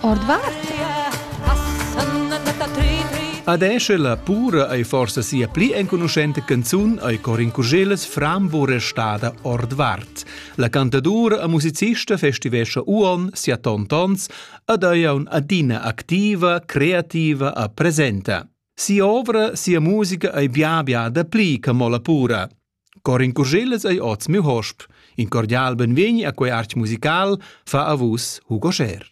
Ordvart? Adesch la pura ei forsa sia pli enconuschenta canzun ei Corin Curgeles Frambo restada ordvart. La cantadura e musicista festivescha uon sia tontons ad ei adina activa, creativa e presenta. Sia ovra, sia musica ei bia bia da pli che mo la pura. Corin Curschellas ei oz miu hosp. In cordial benvegni a quei artg musical, fa a vus Hugo Scher.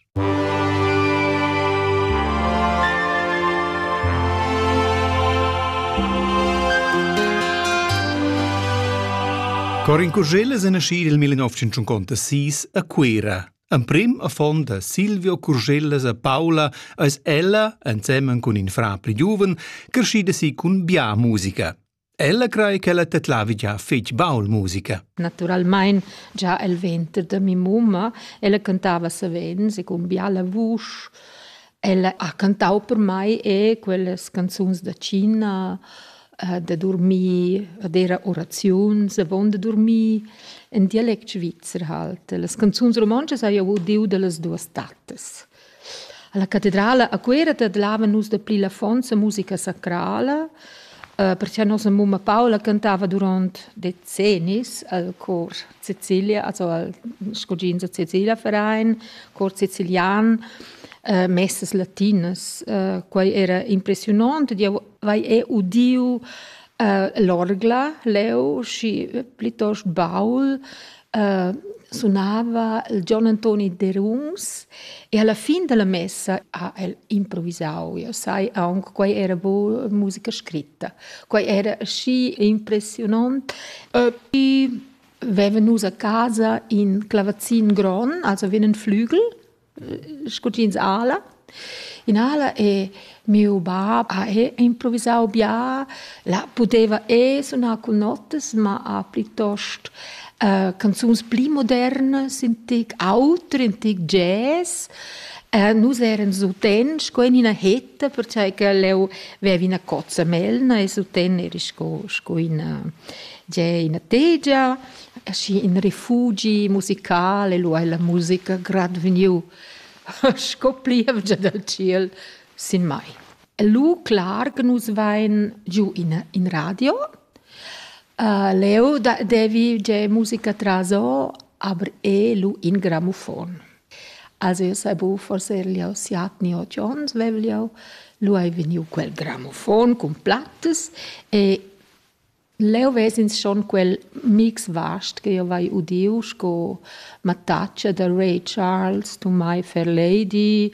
Corin Curschellas è nascì nel 1956 a Cuera. Emprim a fond da Silvio Curschellas a Paula eis ella, ensemen cun in fra pli giuven, crescida si cun bia musica. Ella crai ch'ella tedlavi gia fetg baul musica. Naturalmein già el venter da mi mumma, ella cantava savens e cun biala vusch. Ella ha cantau per mai e quellas canzuns da Cina, eh, da dormir, ad era oraziuns avon da dormir, en dialect svizzer halt. Las canzuns romontschas hai jeu udiu dallas duas tattas. Alla catedrala a Cuera tedlavan nus dapli la fonza musica sacrala, eh, perche nossa mumma Paula cantava durant decennis al cor Sicilia, also al scugins da Sicilia Verein, cor sicilian, eh, messas latinas. Eh, quei era impressiunont ed jeu vai è udiu äh, l'orgla leu schi plitost baul äh, sunava il Gian Antoni Deruns e alla fin della messa ha el improvisau io sai aunc quei era bu musica scritta quei era schi impressionant äh, vi vevan nus a casa in clavazin gron also venen flügel sco jeans ala. In ala e miu bab ha improvisau bia, la pudeva e sunar cun notas, ma ha plitost uh, canzuns pli modernas, in tic auter, in tic jazz. Uh, nus eran suten sco in ina hetta, perciò che leu vevi ina cozza melna e suten eri sco, sco ina, ina tegia. aschi in refugi musical e lu ei la musica grad vegniu sco plievgia dal ciel sin mai. E lu clar che nus vein giu in, in radio. Uh, leu da, devi ge musica traso, aber e lu in grammofon. Also io sai bu forse erliau siatni o Jones vevliau, lu hai vegniu quel grammofon cun plattas e Leu ves'ins schon quel mix vast che jeu vai udiu sco mattatscha da Ray Charles, Tumai Fairlady,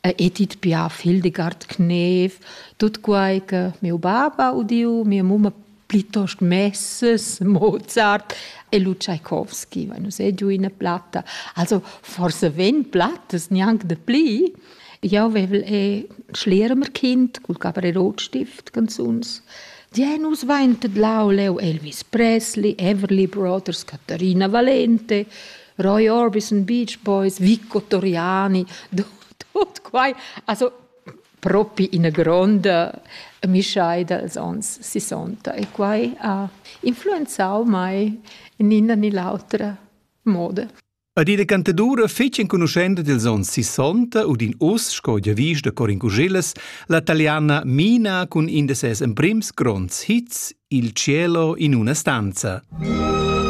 Edith Piaf, Hildegard Knef, tut quei che miu bab ha udiu, mia mumma plitost Messes, Mozart e lu Tschaikovski, va nus ei giu ina platta. Also forsa vegn plattas gnanc dapli. Jau vevel è Schlermerkind cul caper e rotstift canzuns. Die nus vaintet lauleu Elvis Presley, Everly Brothers, Caterina Valente, Roy Orbison, Beach Boys, Vico Toriani, tut, tut quai. Also propi ina gronda mischaida als ons 60 e quai ha influenzau mai in ina ni l'autra moda. Ad ina cantadura fetg enconuschenta dils onns 60 u din uss, sco giavisch da Corin Cuschillas, la taliana Mina cun in da ses emprims gronds hits, Il cielo in una stanza.